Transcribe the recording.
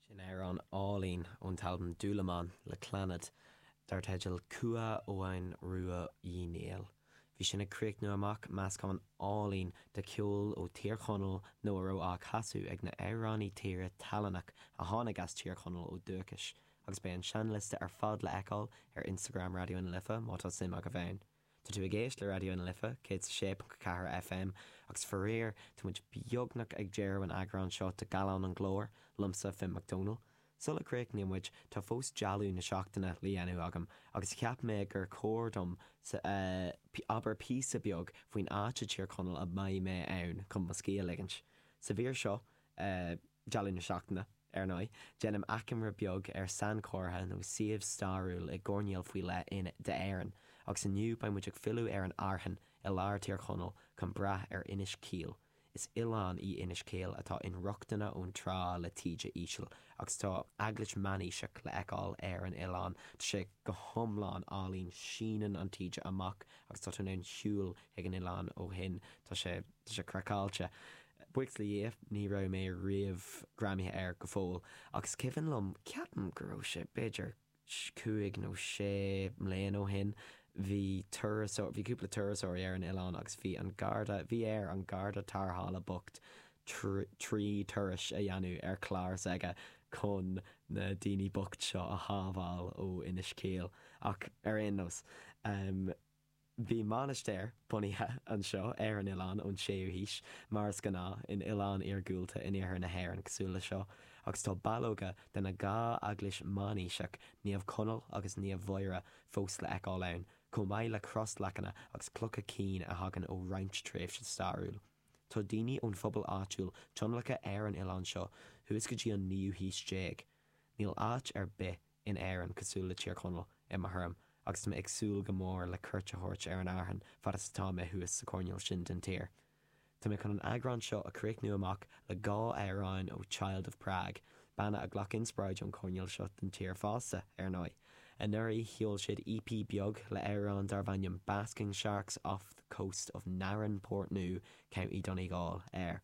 Sin amhrán álainn ón t-albam Dúlamán le Clannad dar teideal Cumha Eoghain Ruaidh Uí Néill. Bhí sin ag críochnú amach meascán álainn de cheol ó Thír Chonaill nó a raibh á chasadh ag na h-amhránaí tíre tallannach a tháinig as Tír Chonaill ó dúchais agus beidh an seinnliosta ar fad le fheiceáil ar Instagram Raidió na Life má tá suim agaibh ann. Tá tú ag éist le Raidió na Life 106.4 FM agus faraor tá muid beagnach ag deireadh an eagráin seo de Gallán an Ghlóir, liomsa, Finn Mac Dónaill. Sula gcríochnaíonn muid tá fós dealbh na seachtaine le dhéanamh agam agus cheap mé gur chóir dom labhairt píosa beag faoin áit i dTír Chonaill a mbeidh mé ann chun mo scíth a ligint. Sa mhír seo. Dealbh na seachtaine, ar ndóigh. Déanaim achoimre beag ar sainchomhartha nó suíomh stairiúil i gcoirnéal faoi leith d'Éirinn, agus inniu beidh muid ag filleadh ar an Fhearthainn i lár Thír Chonaill chun brath ar Inis Caoil. Is oileán í Inis Caoil atá inrochtana ón trá le taoide íseal, agus tá eaglais meánaoiseach le fheiceáil ar an oileán. Tá sé go hiomlán álainn, síneann an taoide amach agus tá tú in ann shiúl chuig an oileán ó shin. Tá sé. Tá sé craiceáilte. Buíochas le Dhia, ní raibh mé riamh greamaithe air go fóill, ach is cuimhin liom, ceapaim go raibh sé b'fhéidir cúig nó sé mbliana ó shin, bhí turasóir, bhí cúpla turasóirí ar an oileán agus bhí an garda, bhí ar an garda tarrthála bocht trí turais a dhéanamh ar chlár s'aige chun na daoine bocht seo a shábháil ó Inis Caoil. Ach ar aon nós. Bhí mainistir bunaithe anseo ar an oileán ón 6ú haois, mar is gnáth in oileáin iargúlta in iarthar na hÉireann cosúil leis seo, agus tá ballóga de na dhá eaglais mheánaoiseach, Naomh Conaill agus Naomh Mháire, fós le fheiceáil ann, chomh maith le crosleacanna agus clocha cinn a thagann ó roinnt tréimhse stairiúil. Tá daoine ón phobal áitiúil tionlactha ar an oileán seo thuas go dtí an naoú haois déag. Níl áit ar bith. in Éirinn cosúil le Tír Chonaill i mo thuairim agus tá mé ag súil go mór le cuairt a thabhairt ar an Fhearthainn fad is atá mé thuas sa choirnéal sin den tír. Tá mé chun an eagrán seo a chríochnú amach le dhá amhráin ó Child of Prague, banna a ghlac inspioráid ón choirnéal seo den tír fosta, ar ndóigh. Anuraidh sheol siad EP beag le amhrán darbh ainm Basking Sharks off the Coast of Narin, Portnoo, County Donegal, air.